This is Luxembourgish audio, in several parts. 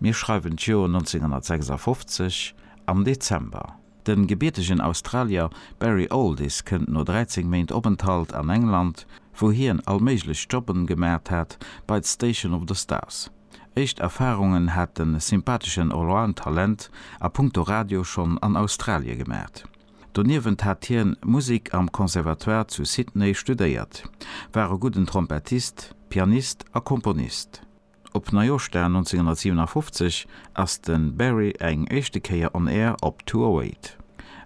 Mir schreiwen d'Joer 1956 am Dezember. De gebiertegen Australier Barry Alldis kënnt no 13 Méint Openthalt an England, wou hien all méiglech Jobben gemat hat, bei d'Station of the Stars. Éischt Erfarungen hat de sympatheschen Allround-Talent a punkto Radio schonn an Australie gemat. Doniewent hat hien Musik am Conservatoire zu Sydney studéiert, war e gudden Trompettist, Pianist a Komponist. Op Neijoschdag 1957 ass de Barry eng éischte Kéier on air op 208.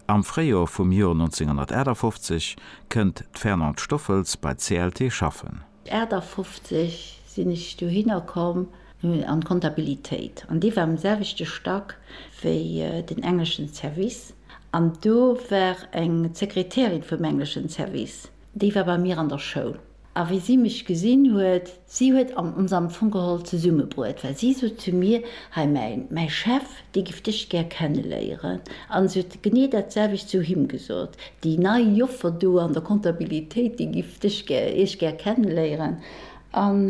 Am Fréijor vum Jor 1958 kënnt d'Fernande Stoffels bei CLT schaffen. 58 sinn ech dohinner komm an d'Kontabilitéit an déi war um selwechte Stack wéi den engleschen Service an do war eng Sekretärin vum engleschen Service, déi war bei mir an der Schoul a wéi si mech gesinn huet, si huet ons am Fong geholl zesummebruet, well si sot zu mir, hei mäi Chef, Déi giff dech gär kenneléieren. An se huet genee dat selwecht zu him gesot, Déi nei Joffer do an der Comptabilitéit, déi giff dech gär, iech gär kenneléieren. An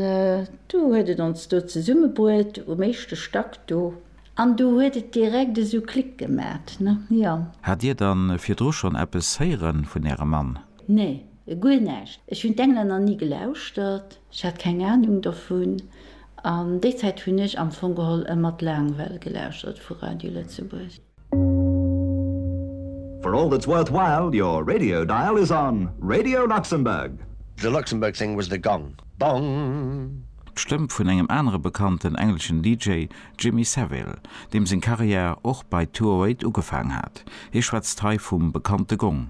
du huet et ons do zesummebruet, um éischte Stack do. An du huet et direkt esou Klick gemat, ne? Jo. Hat dir dann virdru schon eppes héieren vun ärem Mann? Nee, guer näischt. Ech hun d'Englänner ni gelauschtert. Ech hat keng Ahnung dovun. An déi Zäit hunn ech am Fong geholl e mat Laangwell gelauschtert vu Radio Lëtzebuerg. For all that's worthwhile, your radio dial is on Radio Luxembourg. The Luxembourg thing was the gong. Bong! D'Stëmm vun engem anere bekannten engleschen DJ, Jimmy Savile, deem seng Karriär och bei 208 ugefaang hat. Hie schwätzt hei vum bekannte Gong.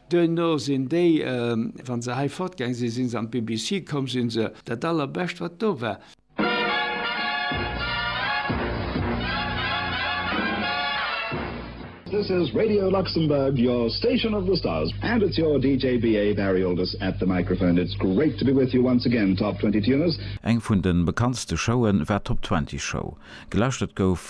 Duerno sinn déi, wa se hei fortgaang sinn, si se an d'BBC komm, sinn se dat Allerbescht, wat do war. This is Radio Luxembourg, your station of the stars and it's your DJ BA Barry Alders at the microphone. It's great to be with you once again, Top Twenty Tuners. Eng vun de bekanntste Showen war d'Top Twenty Show. Gelauschtert gouf